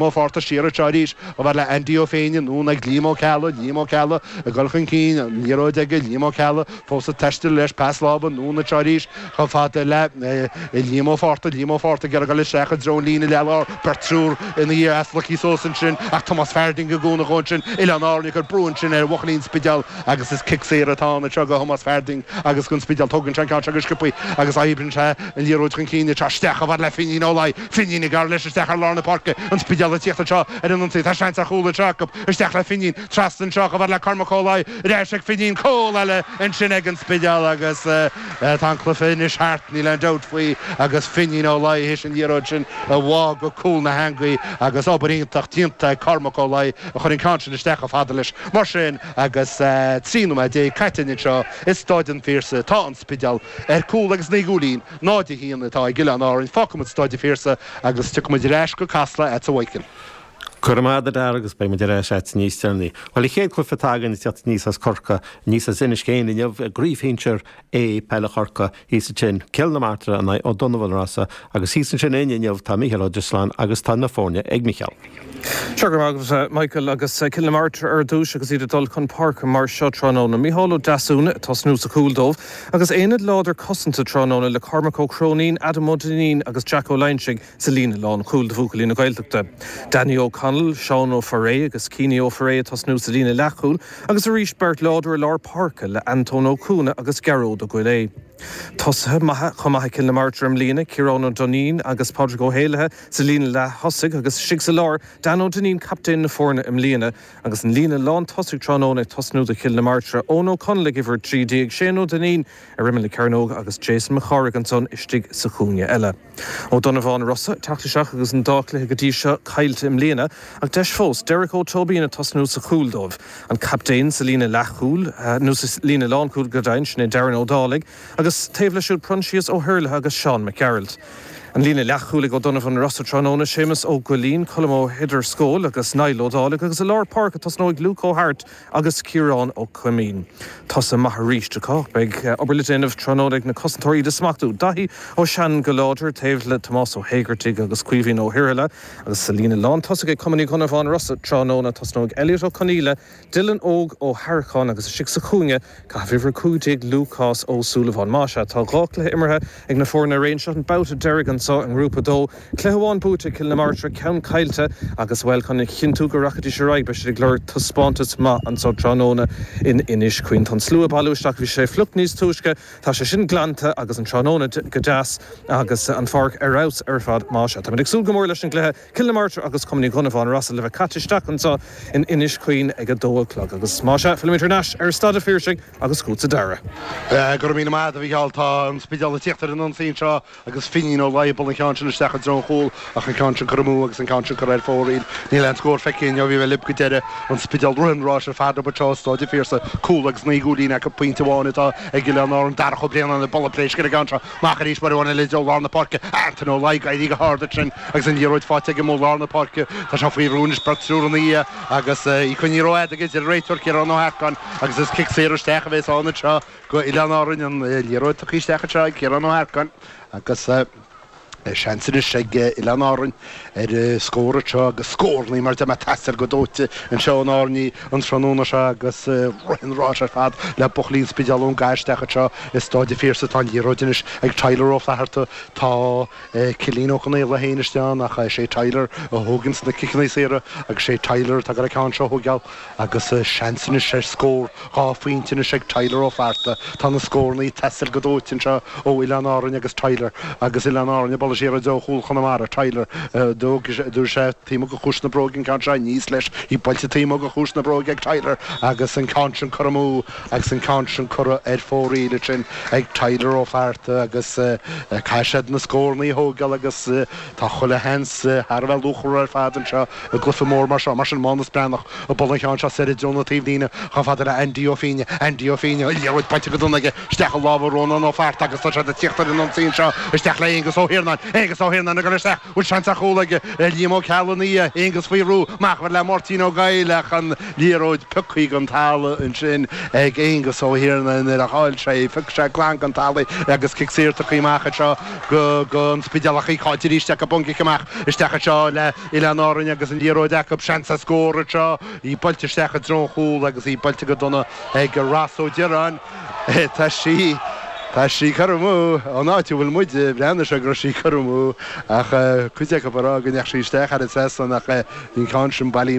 Mo pháirtner siar anseo arís, chomh fada le Andy Ó Féinidh, anonn ag Liam Ó Ceallaigh, Liam Ó Ceallaigh ag dul chun cinn, an liathróid aige, Liam Ó Ceallaigh fós ag taisteal leis, pas láimhe anonn anseo arís chomh fada le Liam Ó Fátharta, Liam Ó Fátharta ag iarraidh dul isteach i dtreo an líne láir, beirt, triúr ina dhiaidh as Lucky Sosa ansin ach Tomás Farding i gcúnamh dhó ansin, Oileáin Árann ag cur brú ansin ar bhuachaillí an Spidéil agus is cic saor atá ann anseo go Thomás Farding agus don Spidéal, tógann sé an ceann seo go sciopthaí agus oibríonn sé an liathróid chun cinn anseo isteach chomh fada le Finín Ó Fínín ag gearradh leis isteach ar lár na páirce, an Spidéal ag tíocht anseo ar an ionsaí, tá seans ar chúl anseo acu, isteach le Fínín, trasna anseo chomh fada le Cormac Ó Laoi, ar ais ag Fínín, cúl eile ansin ag an Spidéal agus tá an cluiche anois thart, níl aon dabht faoi agus Fínín Ó Laoi th'éis an liathróid sin a bhá go cúl na heangaí agus obair iontach déanta ag Cormac Ó Laoi a chur an ceann sin isteach chomh fada leis. Mar sin agus trí nóiméad déag caite anois anseo i Staid an Phiarsaigh, tá an Spidéal ar cúl agus naoi gcúilín, 0 1 atá ag Oileáin Árann fágfaimid Staid an Phiarsaigh agus tiocfaimid ar ais go Casla agat a Mhichíl. Go raibh maith agat a Dara agus beidh muid ar ais agat níos deireanaí. Bhuel, an chéad cluiche atá againn ag tíocht aníos as Corcaigh aníos as Inis Céin inniu i gcraobh shinsir A peile Chorcaí. Thíos ansin, Cill na Martra in aghaidh Ó Donnabháin Rossa agus thíos ansin a'inn inniu tá Mícheál Ó Drisleáin agus tá na foirne ag Micheál. Sea go raibh maith agat, Michael, agus Cill na Martra ar dtúis agus iad ag dul chun páirce mar seo tráthnóna. Micheál Ó Deasúna ag tosnú sa chúl dóibh agus aonad láidir cosanta tráthnóna le Cormac Ó Cróinín, Adam Ó Duinnín agus Jack Ó Loingsigh sa líne lánchúil do bhuachaillí na Gaeltachta. Danny Ó Conaill, Seán Ó Foirréidh agus Cianie Ó Foirréidh ag tosnú sa líne leathchúil agus arís beirt láidir i lár páirce le Antóin Ó Cuana agus Gearóid Ó Goillidhe. Tosaithe maithe chomh maith ag Cill na Martra i mbliana, Ciarán Ó Duinnín agus Pádraig Ó hÉallaithe sa líne leath-thosaigh agus istigh sa lár, Dan Ó Duinnín captaen na foirne i mbliana. Agus an líne lán-tosaigh tráthnóna ag tosnú do Chill na Martra, Eoin Ó Conaill ag uimhir 13, Shane Ó Duinnín ar imeall na cearnóige agus Jason Mac Cárthaigh ansan istigh sa chúinne eile. Ó Donnabháin Rossa, ag teacht isteach agus an dá cluiche go dtí seo caillte i mbliana ach deis fós Derek Ó Tóibín ag tosnú sa chúl dóibh. An captaen sa líne leathchúil, nó sa líne lánchúil go deimhin, sin é Darren Ó Dálaigh agus taobh leis siúd Proinsias Ó hIarlaithe agus Seán Mac Gearailt. An líne leathchúil ag Ó Donnabháin Rossa tráthnóna, Séamus Ó Goillín, Colm Ó hEidirsceoil agus Niall Ó Dálaigh agus i lár páirce tosnóidh Luke Ó hAirt, agus Ciarán Ó Coimín. Tosaithe maithe arís acu. Beidh obair le déanamh tráthnóna ag na cosantóirí iad a smachtú Daithí Ó Seanáin go láidir, taobh le Tomás Ó hÉigeartaigh agus Caoimhín Ó hIarlaithe, agus sa líne lántosaigh ag Cumann Uí Dhonnabháin Rosa tráthnóna tosnóidh Elliot Ó Conaola, Dylan Óg Ó hEaracháin agus istigh sa chúinne ag caitheamh uimhir 15, Lúcás Ó Súilleabháin. Más ea, tá dhá chluiche imeartha Ag na foirne araon, seo an babhta deiridh anseo i nGrúpa 2. Cluiche amháin buaite ag Cill na Martra, ceann caillte agus, bhuel, chun a chinntiú go rachaidís ar aghaidh, beidh siad ag lorg taispeántas maith anseo tráthnóna in Inis Caoin. Tá an slua ag bailiú isteach, bhí sé fliuch níos túisce, tá sé sin glanta agus an tráthnóna go deas agus an pháirc ar fheabhas ar fad. Más ea, táimid ag súil go mór leis an gcluiche. Cill na Martra agus Cumann Uí Dhonnabháin Rossa le bheith caite isteach anseo in Inis Caoin ag a dó a chlog. Agus más ea, fillimid thar n-ais ar Stáid an Phiarsaigh agus chugatsa, a Dhara. Go raibh míle maith agat, a Mhícheáil. Tá an Spidéal ag tíocht ar an ionsaí anseo agus Finín Ó Laoi ag bualadh an ceann sin isteach i dtreo an chúil ach an ceann sin curtha amú agus an ceann sin curtha ar fóraoil. Níl aon scór feicthe againn ó bhí mé libh go deireadh. An Spidéal rith an ráis ar fad acu anseo i Stáid an Phiarsaigh, cúl agus naoi gcúilín acu, pointe amháin atá ag Oileáin Árann, Darach Ó Braonáin ag bualadh pléisc ar an gceann seo. Amach arís mar a bhaineann leis i dtreo lár na páirce, Antaine Ó Laoi ag éirí go hard ansin agus an liathróid faighte aige amuigh i lár na páirce. Tá sé faoi bhrú anois beirt triúr ina dhiaidh agus í coinnithe rófhada aige a deir an réiteoir Ciarán Ó hEarcáin agus is cic saor isteach a bhéas ann anseo go Oileáin Árainn. An liathróid tugtha isteach anseo ag Ciarán Ó hEarcáin agus seans anois ag Oileáin Árainn. Ar scór anseo agus scórannaí, mar a deir mé, ag teastáil go dóite anseo ó na hÁrannaigh an tráthnóna seo agus rith an ráis ar fad le buachaillí an Spidéil ón gcaitheamh isteach anseo i Stáid an Phiarsaigh. Tá an liathróid anois ag Tyler Ó Flatharta. Tá Cillín Ó Conaola féin istigh ann ach sé Tyler a thóigeanns na ciceannaí saora agus sé Tyler atá ag goil an ceann seo a thóigeáil. Agus seans anois ar scór dhá phointe anois ag Tyler Ó Flatharta, tá na scórannaí ag teastáil go dóite anseo ó Oileáin Árainn agus Tyler agus Oileáin Árainn ag bualadh siar i dtreo chúl Chonamara. Tyler, dtabharfaidh sé, dtabharfaidh sé taobh amuigh de chiumhais na bróige an ceann seo, níos leis, í buailte taobh amuigh de chiumhais na bróige ag Tyler agus an ceann sin curtha amú agus an ceann sin curtha ar fóraoil ansin ag Tyler Ó Flatharta agus caithfidh siad na scórannaí a thógáil agus Tá chuile sheans thar a bheith luachmhar ar fad anseo i gcluiche mór mar seo. Mar sin, Mánas Breathnach ag bualadh an cheann seo soir i dtreo na taobhlíne. Chomh fada le Andy Ó Finne. Andy Ó Finne, liathróid buailte go dona aige isteach i lámha Rónán Ó Fátharta agus tá siad ag tíocht ar an ionsaí anseo. Isteach le Aonghus Ó hIarnáin. Aonghus Ó hIarnáin ag goil isteach. Bhfuil seans ar chúl aige thar Liam Ó Ceallanaigh? Aonghus faoi bhrú. Amach chomh fada le Máirtín Ó Goill ach an liathróid pioctha den talamh ansin ag Aonghus Ó hIarnáin. Nuair a chaill sé í, phioc sé glan den talamh í agus cic saor tugtha amach anseo. go, go, an Spidéal ach í caillte aríst acu ón gcic amach, isteach anseo le Oileáin Árainn agus an liathróid acu, seans ar scór anseo, í buailte isteach i dtreo an chúl agus í buailte go dona ag Ross Ó Dioráin, tá sí, tá sí curtha amú, ón áit a bhfuil muide, bhreathnaigh sé go raibh sí curtha amú ach cuid acu ag rá go ndeachaigh sí isteach thar an trasnán ach bhí an ceann sin bailithe.